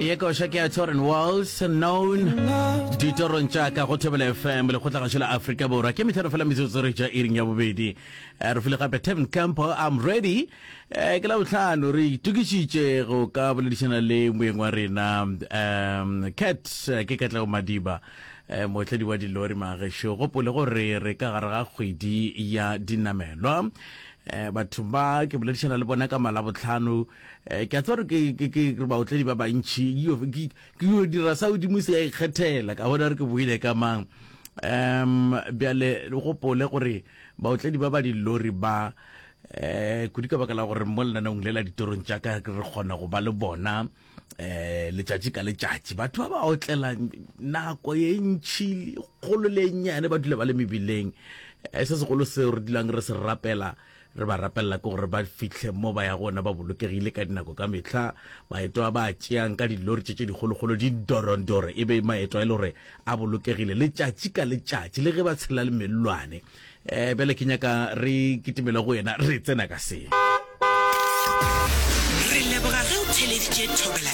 ye koša ke ya torin walls known ditorong tša ka go thobela fm lekgotlagašo la afrika borwa ke metlhano fela metsotso re ja iring ya bobedi Eh, re file gape tevin campo i'm ready Eh, ke la botlhano re itokišitše go ka boledišana le moeng wa rena um cat eh, ke katlego madiba eh, motledi wa dilori magesho gopole gore re ka gare ga kgwedi ya dinamelwa eh, batho ba ke boledišana le bona ka malabotlhano Eh, ke a tseba gore ke baotledi ba bantšhi ke yo dira sa godimo se ya ikgethela ka bona re ke boile ka mang um bjale le gopole gore baotledi ba ba dillori ba um kudu ka baka la gore mo lenanong le la ditorong tša ka re kgona go ba le bona um letšatši ka letšatši batho ba ba otlela nako ye ntšhi kgolo le nnyane ba dula ba le mebileng eh, se segolo seo re dulang re se rapela Re ba rapelela ke gore ba fihle mo ba ya gona ba bolokegile ka dinako ka mehla. Maeto a ba a tšeang ka dilori tše tše dikgolokgolo di dorondore e be maeto a e le gore a bolokegile letšatši ka letšatši le ge ba tshela le mellwane. Eh, bjale ke nyaka re kitimele go yena re tsena ka se. Re leboga ge o theleditše Thobela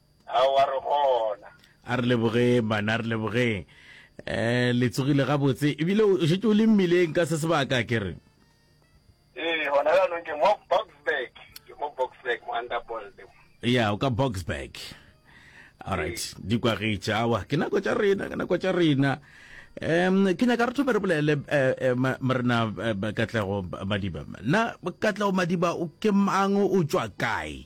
Aowa, re gona. A re lebogeng, bana, re lebogeng. Eh, le tsogile gabotse. Ebile o šetše o le mmileng ka se sebaka, ke re. Ee, gona jaanong ke mo Boksburg. Ke mo Boksburg, mo Underbold. Ya, o ka Boksburg. Alright, di kwagetše. Aowa, ke nako tša rena, ke nako tša rena. Um, ke nyaka re thome re bolele eh, eh, ma- morena eh, Katlego Madiba. Na Katlego Madiba o ke mang, o tšwa kae?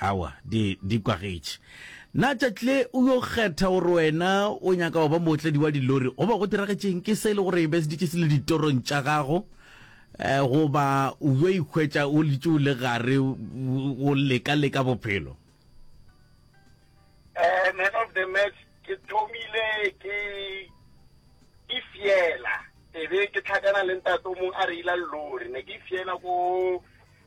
Aowa, di, di kwagetše. Na Tšatle o yo kgetha gore wena o nyaka go ba mootledi wa dilori goba go diragetšeng ke se e le gore e beseditše se le ditorong tša gago? Eh, goba o yo ikhwetša o litše o le gare o leka-leka bophelo? Eh, man of the match, ke thomile ke ke fiela ebe ke tlhakana le ntato mong a reila lori ne ke fiela ko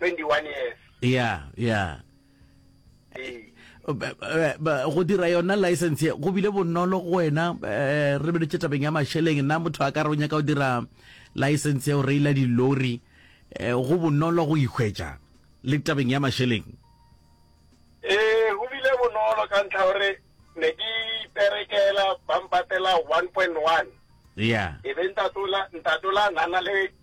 21 years ya ya go dira yona license go bile bonolo go wena eh, re bedetse tabeng ya masheleng nna motho a ka re o nyaka go dira license ya go reila dilori eh, go bonolo go ikgwetša le tabeng ya masheleng ee eh, go bile bonolo ka ntlha gore ne ke iperekela ba mpatela 1.1 ya e be ntatola ntatola nana le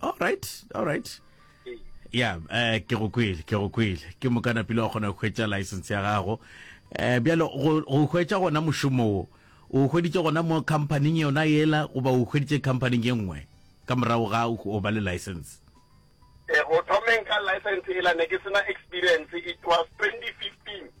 all right all right ya eh ke go kwele ke go kwele ke mokana pele wa kgona go hwetša license ya gago eh bjalo go go hwetša gona mošomo wo o hweditše gona mo company yona yela goba o hweditše company ye nngwe ka morago ga o ba le license eh go thomeng ka license ela ne ke sena experience it was 2015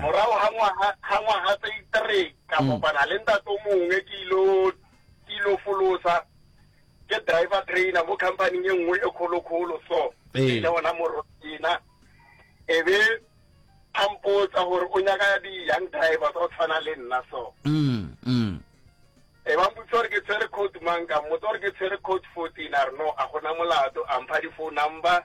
Morago ga ngwaga, ga ngwaga tse three, ka kopana le ntate o mongwe, ke ilo, ke ilo folosa, ke driver trainer mo company-ing e nngwe e kgolo-kgolo so. Ee. Le ona morwa ena, e be a mpotsa gore o nyaka di-young drivers o tshwana le nna so. E ba mpotsa gore ke tshwere code mang, ka mmotsa gore ke tshwere code fourteen, a re no, a gona molato, a mpha di-phone number.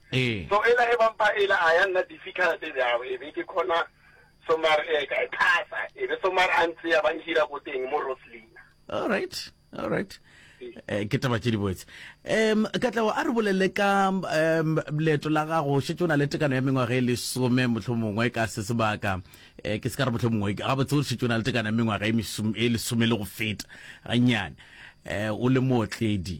Ee. So ela ebang pa ela a ya nna difficult bjalo, ebe ke khona Somar e ka e phasa, ebe Somar a ntsea ba nhira ko teng mo Roslina. All right, all right. Eh, ke taba tše di boetse um katlago a re bolele ka um leeto la gago o šetse o na le tekano ya mengwaga e lesome motlho mongwe ka se sebaka um ke se ka re motlho mongwe ga botse o šetse o na le tekano ya mengwaga e, e lesome le go feta gannyane um o le mootledi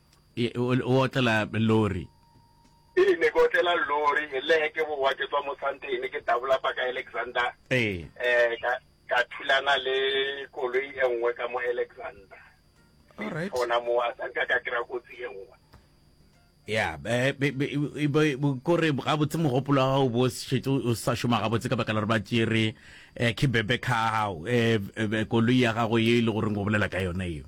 E, o, o otlela lori. Ee, ne ke otlela lori e le he ke bowa ke tswa mo santene ke dabola pa ka alexander Ee. eh ka ka thulana le koloi e nngwe ka mo alexander All right. gona mo a sa nka ka kry-a kotsi e nngwe ya be- be- be- e- be- bo- kore gabotse mogopolo wa gago bo šetse o sa šoma gabotse ka baka la gore ba tšere um ke bebe ka gago um koloi ya gago ye e le goreng o bolela ka yona eo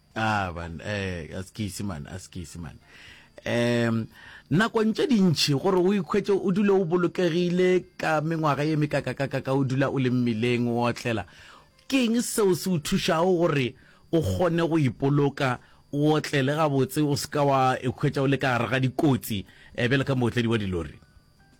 Ah, man, eh, a se ke ise man, a se ke ise man. Um, nakong tše dintšhi gore o ikhwetse o dule o bolokegile ka mengwaga ye mekakakakaka o dula o le mmileng o otlela ke eng seo se o thušago gore o kgone go ipoloka o otlele gabotse o se ka wa ikhwetsa o le ka gare ga dikotsi um bjale ka mootledi wa dilori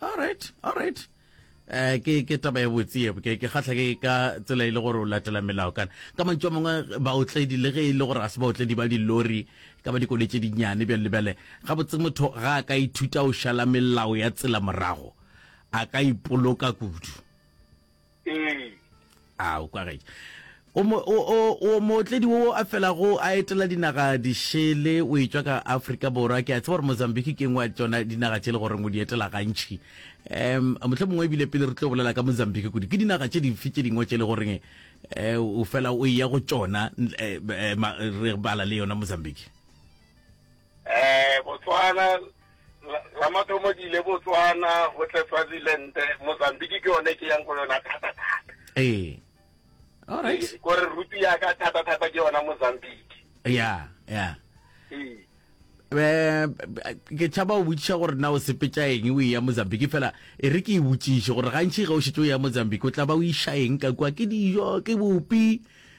all right all right eh ke ke taba e botse e ke ke khatla ke ka tsela ile e gore o latela melao kana ka mantšo mongwe ba otledi le ge ile e gore a se ba otledi ba dilori ka ba dikoletse dinyane bjale lebele ga botse motho ga ka ithuta o shala melao ya tsela morago a ka ipoloka kudu ee a o kwagetse o mootledi o a felago a etela dinaga dišele o etswa ka aforika borwa ke a tseba gore mozambique ke ngwe tsona dinaga tse e le goreng o di etela gantšhi um motlho mongwe ebile pele re tlo bolela ka mozambique kudu ke dinaga tse dife tse dingwe tse e le goreng um o fela o ya go tsona eh, eh, re bala le yona mozambique Eh, Botswana, la, la mathomo ke ile Botswana, go tle Swaziland, Mozambique ke yone ke yang go yona thata thata. Eh. All right. Eh, gore rutu ya ka thata thata ke yona Mozambique. Yeah, yeah. Eh. Eh, ke tšhaba o botšiša gore na o sepetša eng o eya mozambique fela e re ke e botšiše gore gantši ge o šetse o ya mozambique o tla ba o iša eng ka kua ke dijo ke bopi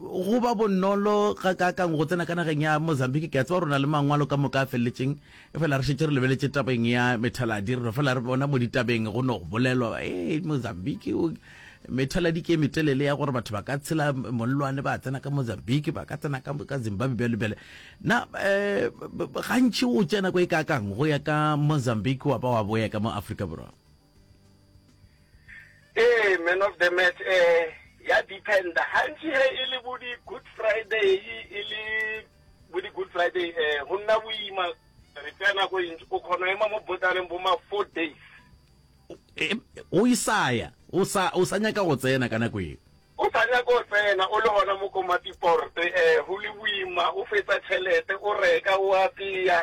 go ba bonolo ga kaakang go tsena ka nageng ya mozambique ke a tseba rona le mangwalo ka moka a feleletseng e fela re šetse re lebeletse tabeng ya methaladi re no fela re bona mo ditabeng go no go bolelwa e mozambique methaladi ke metelele ya gore batho ba ka tshela mollwane ba tsena ka mozambique ba ka tsena ka zimbabwe bjalo bjale na um gantši o tsena ko e kaakang go ya ka mozambique wa ba wa boya ka mo afrika borwa Ee, man of the match eh ya dependa gantši ge e le bo di-good friday e le bo di-good friday eh go nna boima re tsaya nako e ntši o kgona ema mo botaneng bo ma four days o isaya o sa o sa nyaka go tsena ka nako e o sa nyaka go tsena o le gona mo komatiporte eh go le boima o fetsa tšhelete o reka o apeya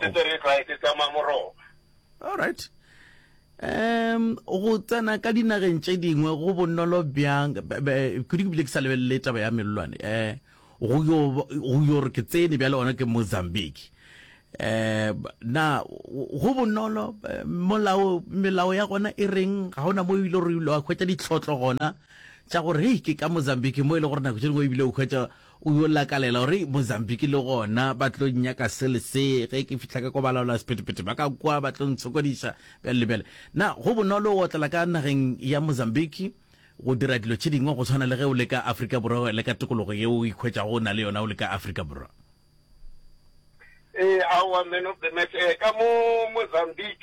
se tsere tlae se tsamaya moroma all right um go tsena ka dinageng tše dingwe go bonolo bjang kudu ke bile ke sa lebelele taba ya melelwane um go yo re ke tsene bjale gona ke mozambique um na go bonolo molao melao ya gona e reng ga gona mo ebile gore ile wa hwetša ditlhotlo gona tša gore hei ke ka mozambique mo e le gore nako tše dingwe ebile o hwetša O yo lakalela gore Mozambique le gona ba tlo nnyaka se le se. Ge ke fihla ka kwa balaolasephetephete ba ka kwa ba tlo ntshokodiša bjalo le bjale. Na go bonolo go otlela ka nageng ya Mozambique go dira dilo tše dingwe go swana le ge o le ka Afrika Borwa le ka tokologo yeo o ikhwetšago o na le yona o le ka Afrika Borwa? Ee, aowa, Man of the Match. Ee, ka mo Mozambique.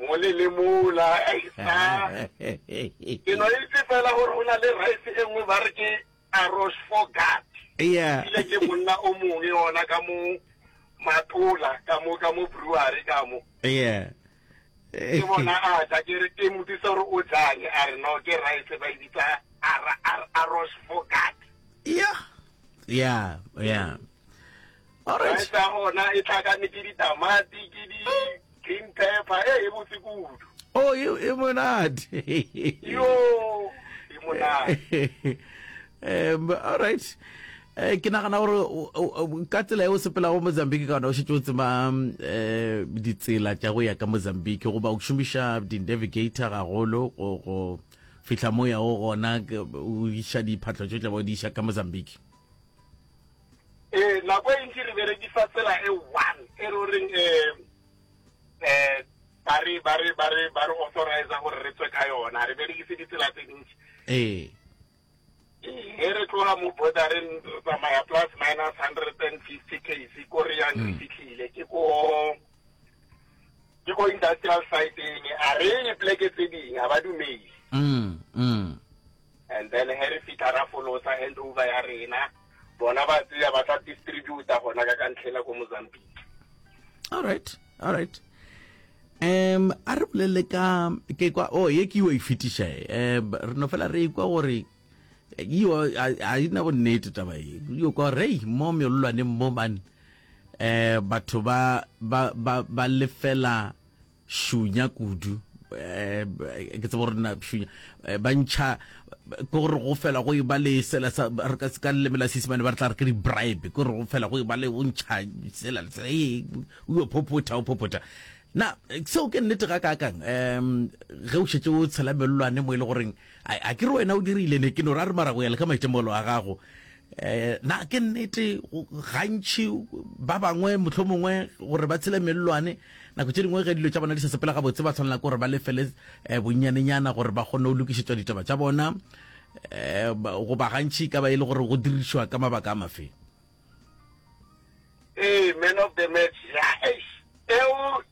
mole le mola ke no itse fela gore go na le rice e nngwe ba re ke arosh fogat ile ke monna o mongwe ona ka mo matola ka mo ka mo brewery ka mo ke bona a tla ke re ke motsisa gore o jang a re no ke rice ba e bitsa arosh fogat yeah yeah yeah Alright. Rice ya gona e tlhakane ke ditamati ke di green pepper e e botse kudu Oh, e e monate. yo e monate Em, all right. Eh, ke nagana gore o- o- o- ka tsela e o sepelago mozambique ka ona o šetse o tseba mm, eh, ditsela tša go ya ka mozambique goba o šomiša di-navigator gagolo go go fihla mo yago gona ke- o iša diphatlo tšo tlabe o di iša ka mozambique Ee, nako e ntši re berekisa tsela e one e re o reng um um ba re ba re ba re ba re authorize gore re tswe ka yona re berekise ditsela tse dintši ee ge re tloga mo bordereng re tsamaya plus minus hundred and fifty case ko re yang re mm. fitlhile ke ko ke ko industrial siteng a re ye pleke tse ding ga ba dumele mm, mm. and then ge re fitlha ra folosa hand over ya rena bona ba tseya ba tla distributa gona ka ka ntlhela ko mozambique all right all right um a re bolelele ka ke kwa o oh, ye ke yo e fetiša e eh, um re no fela re kwa gore yo a ina go nnete taba e yo kwa rei mo meololwaneng mo bane um batho ba lefela šunya kudu eh, ke tsebo gore na šunya eh, ba ntšha ke gore go fela go eba le sela sa re ka se ka leleme la sesimane ba re tla re ke di-bribe ke gore go fela go eba le o ntšha sela le sela ee o yo phopotha o phopotha na seo ke nnete ga kakang um ge o šetse o tshela melelwane mo e le goreng a ke re wena o dirile ne ke no ra re mara go ya le ka maitemogelo a gago Eh, na ke nnete gantši ba bangwe motlho mongwe gore ba tshele mellwane nako tse dingwe ge dilo tša bona di sa sepela gabotse ba tshwanela ke gore ba lefele um bonnyanenyana gore ba kgone go lokišetswa ditaba tša bona um eh, goba gantši ka ba e le gore go dirišwa ka mabaka a mafe ee man of the match eo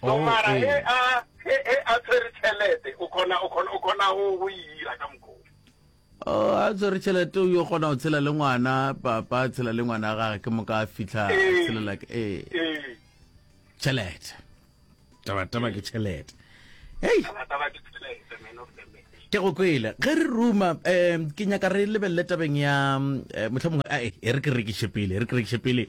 so mara he a he he a tshwere tšhelete o khona o khona o khona go go e ira ka mokgwa Oh, a tshwere tšhelete o yo kgona go tshela le ngwana papa a tshela le ngwana wa gage ke moka a fitlha a Ee. tshelela ke ee ee tšhelete tabataba ke tšhelete hei taba taba ke tšhelete man of the match ke go kwele ge re ruma um ke nyaka re lebelele tabeng ya um motlha mongwe ae e re ke rekiše pele e re ke rekiše pele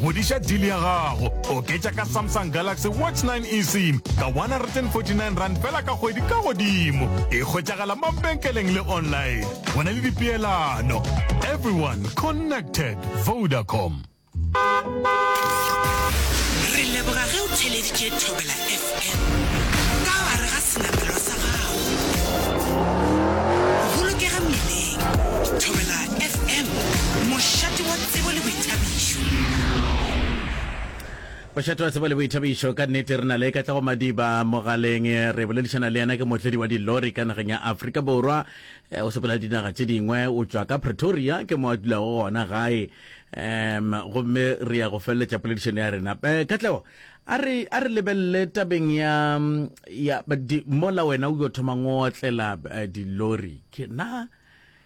Ngwadiša deal ya gago. Oketša ka Samsung Galaxy Watch 9 eSIM ka R149 fela ka kgwedi ka godimo. E hwetšagala mabenkeleng le online. Go na le dipeelano. Everyone connected. Vodacom. Re leboga ge o theleditše Thobela FM ka gare ga senamelwa sa gago. Bolokega mmileng. Thobela FM, mošate wa Tsebo le boithabišo. Bošate wa Tsebo le boithabišo, ka nnete re na le Katlego Madiba mogaleng. Re boledišana le yena, ke mohlodi wa dilori ka nageng ya Afrika Borwa. Eh, o sepela dinaga tše dingwe, o tšwa ka Pretoria, ke mo a dulago gona gae. Um gomme re ya go feleletša poledišano ya rena. Eh, Katlego, a re a re lebelele tabeng ya ya di, mola wena o yo thomang o otlela eh, dilori ke na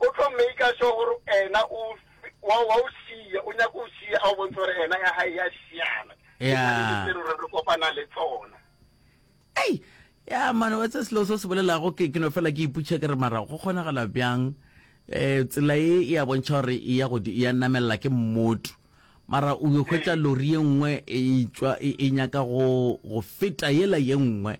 O tlo maker sure gore ena o wa wa o siya o nyaka o siya a o bontse gore ena ya hae ya siana Yeah. tse re re kopana le tsona ei ya mane wa tse selo se o se bolelago ke ke no fela ke iputšha ke re mara go kgonagala bjang um tsela e e a bontšha gore e ya godi- e ya namelela ke mmoto mara o yo hwetša lori ye nngwe e tšwa e e nyaka go go feta yela ye nngwe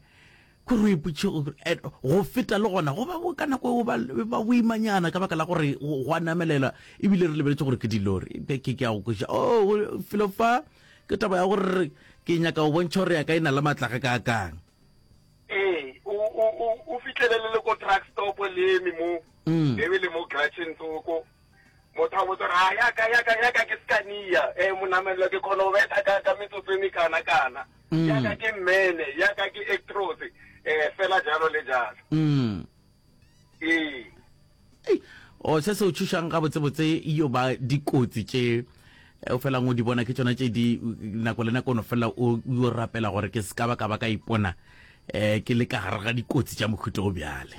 Ko re ipotše go feta le gona go ba go ka nako go ba boimanyana ka baka la gore go a namelela ebile re lebeletše gore ke dilori ke ke ya go kweša o oh, felo fa ke taba ya gore ke nyaka go bontšha gore ya ka e na le matlage ka kang ee o fitlhelele le ko truck stop leme mo mm. ebe le mo gratchens oko Motho a botsa gore, A ya ka, ya ka, ya ka ke Scania? Ee, monamelelo, ke kgona go betha ka, ka metsotso e mekana-kana. Mm. Ya ka ke Mene, ya ka ke Actros, eh, fela jalo le jalo. Mm. Ee. Ei, o se se o tšhošang gabotsebotse yo ba dikotsi tše eh, o felang o di bona ke tšona tše di nako le nako no fela o yo rapela gore ke se ka ba ka ba ka ipona um ke le ka gare ga dikotsi tša mohuto o bjale